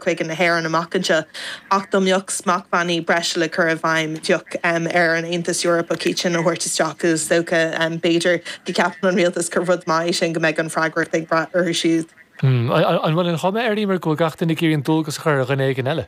chuig na hÉireann amach anseo ach dá mbeadh smachtbhannaí breise le cur i bhfeidhm bheadh ar an Aontas Eorpach iad sin a thabhairt isteach agus is dócha, b'fhéidir, go gceapann an rialtas gur rud maith é sin, go mbeidh an fhreagracht ag brath orthu siúd. An bhfuil an chuma air, Eimear, go bhfuil gach duine ag iarraidh an dualgas a chur ar dhuine éigin eile?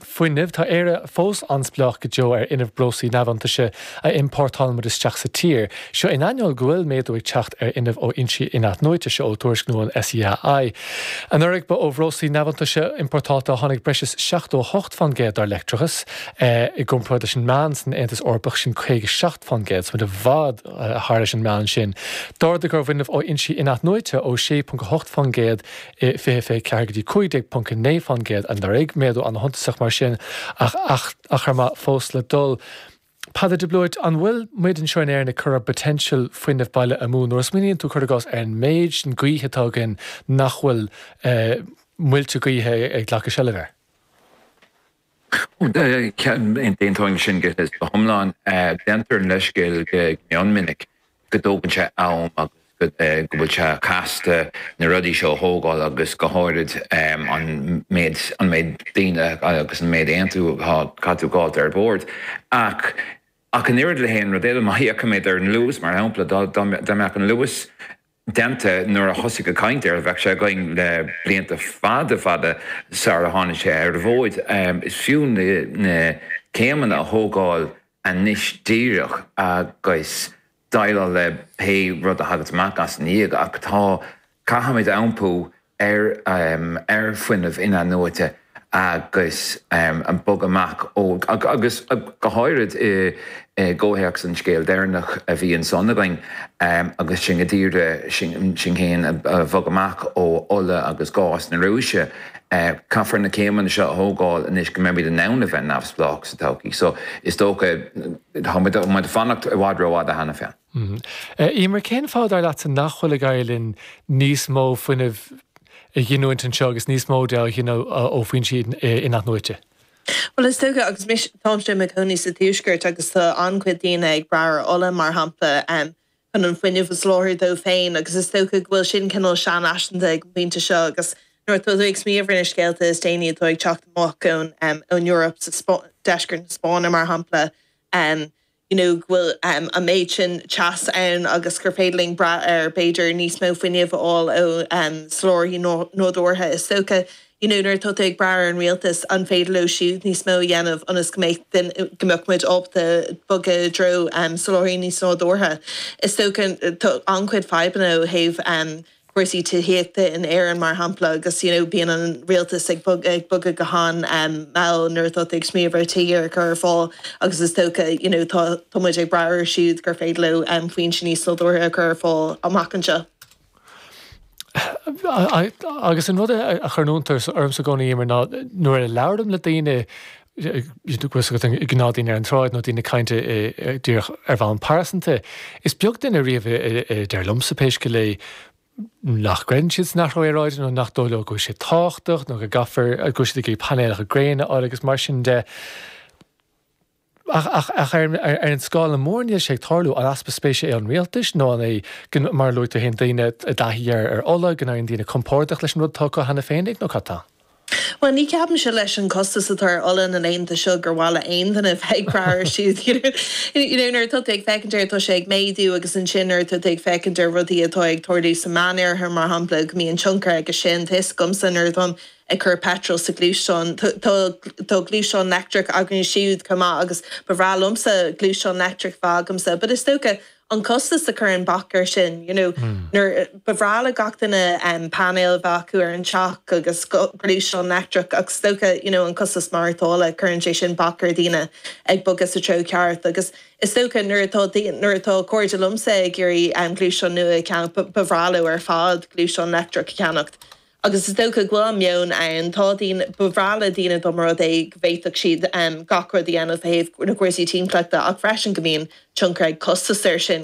Fuinneamh, Tá Éire fós an-spleách go deo ar fhuinneamh breoslaí neamhiontaise a iompórtálann muid isteach sa tír. Seo in ainneoin go bhfuil méadú ag teacht ar fhuinneamh ó fhoinsí in-athnuaite, seo ó tuairisc nua an SEAI. Anuraidh, ba ó bhreoslaí neamhiontaise iompórtáilte a tháinig breis is 78 fán gcéad dár leictreachas, i gcomparáid leis an meán san Aontas Eorpach, sin 57 fán gcéad, so tá muid i bhfad thar éis an meán sin. D'ardaigh ár bhfuinneamh ó fhoinsí in-athnuaite ó 6.8 fán gcéad 2024 go dtí 15.9% anuraidh, méadú an-shuntasach mar sin, ach achar maith fós le dul. Peadar de Blúit, An bhfuil muid anseo in Éirinn ag cur ár bpoitéinseal fuinnimh baile amú? Nuair a smaoiníonn tú cuir i gcás ar an méid sin gaoithe atá againn nach bhfuil muilte gaoithe ag glacadh seilbh air. D'aontóinn sin go hiomlán. Déantar an leithscéal go mion minic go dtógann sé am agus go bhfuil sé casta na rudaí seo a thógáil agus go háirid an méid an méid daoine agus an méid aontú atá le tabhairt ar bord. Ach ach an oiread le haon rud eile, má fhéachaimid ar an Luas, mar shampla, dá mbeadh an Luas déanta nuair a thosaigh an chaint air. Bheadh sé againn le blianta fada fada sara tháinig sé ar an bhfód. Is fiú na céimeanna a thógáil anois díreach agus déileáil le pé rud a thaganns amach as i ndiaidh ach tá, caithfimid iompú ar ar fuinneamh in-athnuaite agus bogadh amach ó agus go háirid i gcomhthéacs an scéal deireanach a bhí ansan againn agus sinn ag iarraidh sinn féin a bhog amach ó ola agus gás na Rúise. Caithfear na céimeanna seo a thógáil anois go mbeimid in ann a bheith neamhspleách sa todhchaí so is dócha tá muid ag fanacht i bhfad rófhada cheana féin. Eimear, Cén fáth, dar leatsa, nach bhfuil ag éirí linn níos mó fuinnimh a ghiniúint anseo agus níos mó de a ghineadh ó foinsí in-athnuaite? Bhuel, is dócha, agus mise, táimse i mo chónaí sa tuaisceart agus tá an-chuid daoine ag brath ar ola, mar shampla, chun an fuinneamh a sholáthar dóibh féin agus is dócha go bhfuil sin cineál seanfhaiseanta ag an bpointe seo agus nuair atá tú ag smaoineamh ar na scéalta is déanaí atá ag teacht amach ón Eoraip, sa, deisceart na Spáinne, mar shampla, you know, go bhfuil an méid sin teasa ann agus gur féidir linn brath ar b'fhéidir níos mó fuinnimh a fháil ó sholáthraithe nádúrtha. Is dócha, you know, nuair atá tú ag brath ar an rialtas an féidir leo siúd níos mó a dhéanamh ionas go mbeadh muid ábalta bogadh i dtreo soláthraí níos nádúrtha. Is dócha tá an-chuid fadhbanna ó thaobh cúrsaí tithíochta in Éirinn mar shampla agus you know bíonn an rialtas ag bogadh go han mhall nuair atá tú ag smaoineamh ar tithe a chur ar fáil agus is dócha you know tá tá muid ag brath orthu siúd gur féidir leo foinse níos sábháilte a chur ar fáil amach anseo. Agus an rud a chuireann iontas ormsa i gcónaí Eimear ná nuair a labhraím le daoine tá 'fhios agat gnáthdhaoine ar an tsráid nó daoine ag caint díreach ar bhonn pearsanta. Is beag duine riamh a deir liomsa, pé scéal é, nach gcreideann siad san athrú aeráide nó nach dóigh leo go bhfuil sé tábhachtach nó go gcaithfear, go bhfuil siad ag iarraidh painéalacha gréine a fháil agus mar sin de. Ach ar an scála mór níl sé ag tarlú. An easpa spéise é ón rialtas nó an é, mar a luaigh tú féin, daoine i dtaithí ar ola, go n-éiríonn daoine compordach leis an rud atá acu cheana féin? Nó cad tá? Bhuel, ní ceapaimse leis an costas atá ar ola na laethanta seo gur mhaith le haon duine bheith ag brath air siúd. You know, nuair atá tú ag féachaint air tá sé ag méadú agus ansin nuair atá tú ag féachaint ar rudaí atá ag tarlú sa Meánoirthear mar shampla go mbíonn tionchar aige sin. Tá 'fhios agamsa nuair atáim ag cur petrol sa ghluaisteán, tá gluaisteán leictreach againne siúd chomh maith agus ba bhreá liomsa gluaisteán leictreach bheith agamsa but is dócha, an costas a chuireann bac ar sin you know nuair ba bhreá le gach duine em painéil a bheith acu ar an teach agus gluaisteán leictreach ach is dócha you know an costas maireachtála cuireann sé sin bac ar dhaoine ag bogadh sa treo ceart agus is dócha nuair atá nuair atá cairde liomsa ag iarraidh em gluaisteán nua a cheannach ba bhreá leo ar fad gluaisteán leictreach a cheannacht agus is dócha go bhfuil an meon ann, tá daoine, ba bhreá le daoine dá mba rud é go bhféadfadh siad gach rud a dhéanamh ó thaobh na gcúrsaí timpeallachta ach freisin go mbíonn tionchar ag costas air sin.